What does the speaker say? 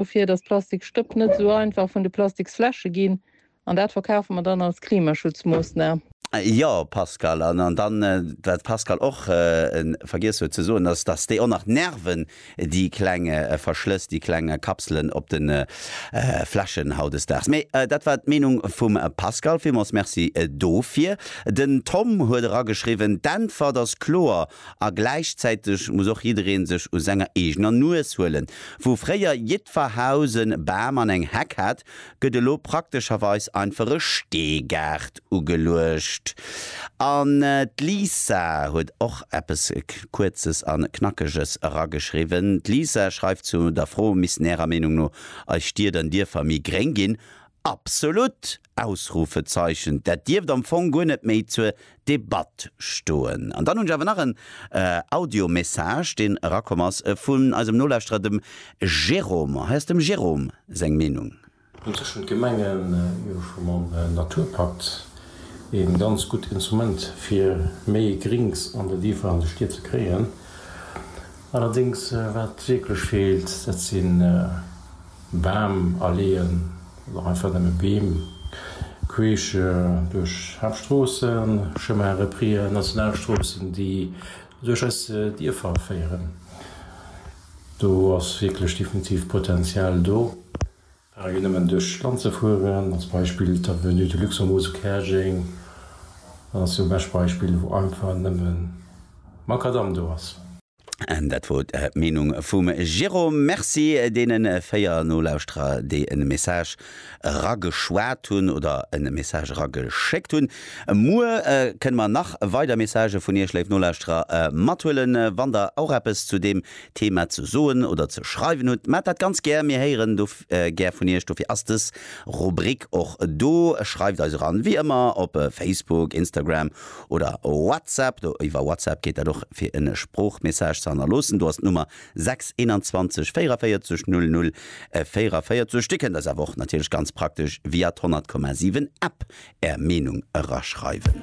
dofir, dass d'Plastikstëpp net esou einfach vun de Plastiksfläsche ginn. An dat verkafe mer dann als Klimaschutzmoossnam. Jo, Pascal. An dann, wat d'Pascale och vergiess huet ze soen, ass, dass déi och nach nerven, déi kleng Verschlëss, déi kleng Kapselen op de Fläschen hautdesdaags. Mee dat war d'Meenung vum Pascal. Villmools Merci dofir. Den Tom huet erageschriwwen, D'Äntwert ass kloer, A gläichzäiteg muss och jiddereen sech u senger eegener Nues huelen. Wou fréier jiddfer Haus en Bam an eng Heck hat, gëtt elo praktescherweis einfach e Steegaart ugeluecht. An d'Lisa huet och eppes Kuerzes an Knackeges erageschriwwen. D'Lisa schreift zu der Fro, Missten Ärer Meenung no eis Stied an Dierfer méi gréng ginn? Absolut! Ausrufezeichen, dat dierft am Fong guer net méi zur Debatt stoen. An dann hunn ech awer nach en Audiomessage, deen erakomm ass vun eisem Nolauschterer, dem Jérôme. Hei ass dem Jérôme seng Meenung. An tëschent Gemengen jo scho mam Naturpakt een ganz gutt Instrument fir méi Grinks an den Dierfer an de Stied ze kréien. Allerdéngs wat wierklech feelt dat sinn Bam aleeën oder einfach nëmme Beem queesch duerch Haaptstroossen, Chemins reprises, Nationalstroossen, déi duerch eis Dierfer féieren, do ass wierklech definitiv Potenzial do. Par exemple nëmmen duerch d'Land ze fueren, als Beispill d'Avenue de Luxembourg zu Käerjeng, dat ass jo e bescht Beispill, wou einfach nëmme Makadamm do ass. An dat wor d'Meenung vum Jérôme. Merci deene 4 Nolauschterer, déi en Message erageschwat hunn oder en Message erageschéckt hunn. Muer kënne mer nach weider Messagë vun iech, léif Nolauschterer, mathuelen. Wann der och eppes zu deem Thema ze soen oder ze schreiwen hutt, maacht dat ganz gär. Mir héieren do gär vun iech. Dofir ass dës Rubrik och do. Schreift eis eran, wéi ëmmer, op Facebook, Instagram oder WhatsApp, do iwwer WhatsApp geet dat och, fir en Sproochmessage ze hannerloossen. Do ass d'Nummer 6 21 44 00 44. Dir kënnt eis awer och natierlech ganz praktesch via d'Honnertkommasiwwen App Är Meenung eraschreiwen.